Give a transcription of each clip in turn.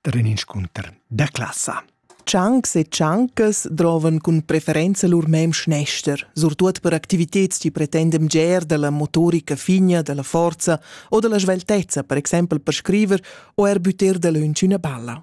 per in inscunter da classa. Ciancs e ciancas drovan cun preferenza lur mem schnester, surtut per activitads chi pretendem ger dalla motorica figna, dalla forza o dalla sveltezza, per exempel per scriver o er butter dalöntsch üna balla.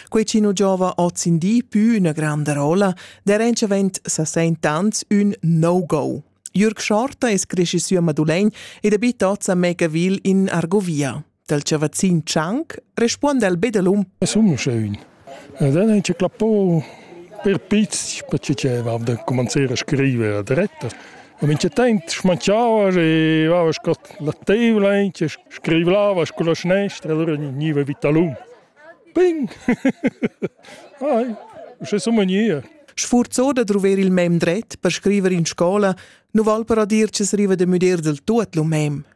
Quei chi nu giova oz in di pü üna granda rola, der entschavent sa sent ans ün no-go. Jürg Schorta es cresci sü a Madulegn ed abita oz a Megaville in Argovia. dal chavazzin Tschanc respuonda el be delum. Sun sche ün. Ed dann ha clappo per pizz per chi deva da comencer a scriver a diretta. Ma min c'è tempo smanchava e vava con la tavola e scriveva con la snestra, allora veniva vitalum. Ping! Ai, c'è so mania. Sfurzo da trover il mem dret per scriver in scola, nu val per dir che se riva de müder del tuot lu mem.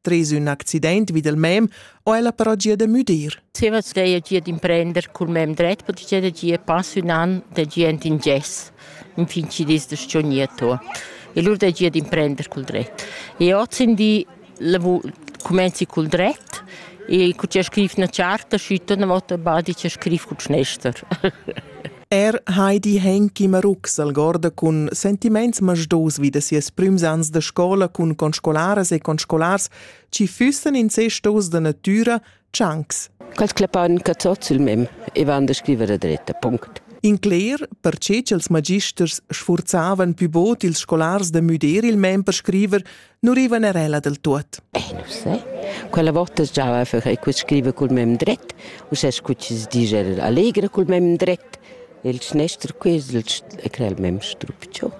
Tres ün accident vid il mem ho ella però gia da müdir. Zieva stueia gia d'imprender cul mem dret, perché gia da gia pass ün an da gent in gess, in fin ci dis da sciogniato. E lur da gia d'imprender cul dret. E oz in di comenzi cul dret e cu c'è scrif na charta, schütta una volta badi c'è scrif cul schnester. Er Heidi Henki Marux algorda cun sentiments masdos vi da sias prüms ans da scola cun conscolaras e conscolars chi füssan incestos da natüra tschancs. Quels clapan cazot sul mem e van da scriver da dretta, punct. In cler, perche ch'els magisters sfurzavan pü bod ils scolars da müder il mem per scriver, nu rivan er ella del tuot. Eh, nu sai. Quella volta stava a fare que scrive col mem dret, u se scucci si dice allegra col mem dret. Il snestro questo e crea il mem strupcio.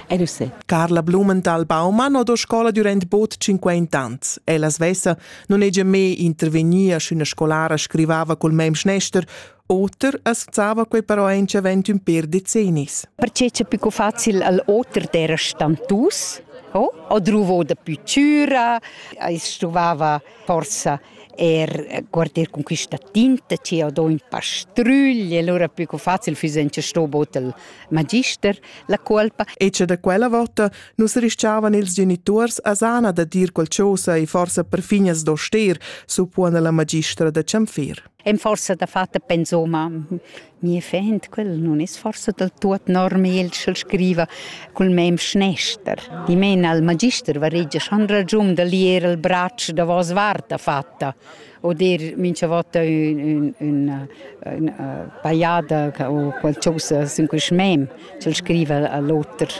E nu sai. Carla Blumenthal Baumann ho do scola durant bod 50 ans. Ella svessa non egia me intervegnia sch'üna scolara scrivava col mem snester Oter assazzava quei però aunc avent ün per decennis. Perché c'è più facil al oter d'era stantus? Oh? O druvo da più cura, ais stuvava forsa er guardar con questa tinta ci ho do in pastrugli, allora più facile füssen ci sto bot il magister la colpa. E c'è da quella volta nus rischiavan ils genitors a sana da dir qualcosa e forsa per finas do ster, suppuona la magistra da Cianfir. Ein forsa dafatta pensoma mia fend, quel non es forsa del tuot normal sch'el scriva cul mem schnester. Di men al magister varegia schon ragiun da lier il braccio da vos varta fatta o dir mincha vota ün, ün, ün pajada o qualcosa sün quist mem, ch'el scriva all'oter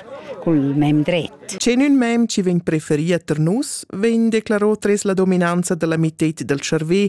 cul mem dret. C'è ün mem chi vegn preferì ter nus, vegn declarò tres la dominanza della mitted del cervè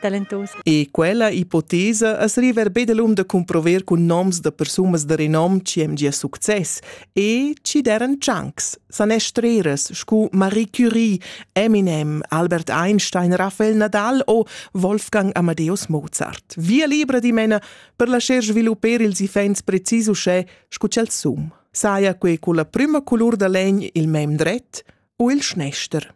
talentos. E quella ipotesa as riva be delum da cumprover cun noms da persunas da renom chi hem gia success e chi deren chunks, sanestreras scu Marie Curie, Eminem, Albert Einstein, Raphael Nadal o Wolfgang Amadeus Mozart. Via libra dimena per lascer svilupper ils ifens precis uschè scu ch'el sum. Saja que culla prüma culur da legn il mem dret o il schnester.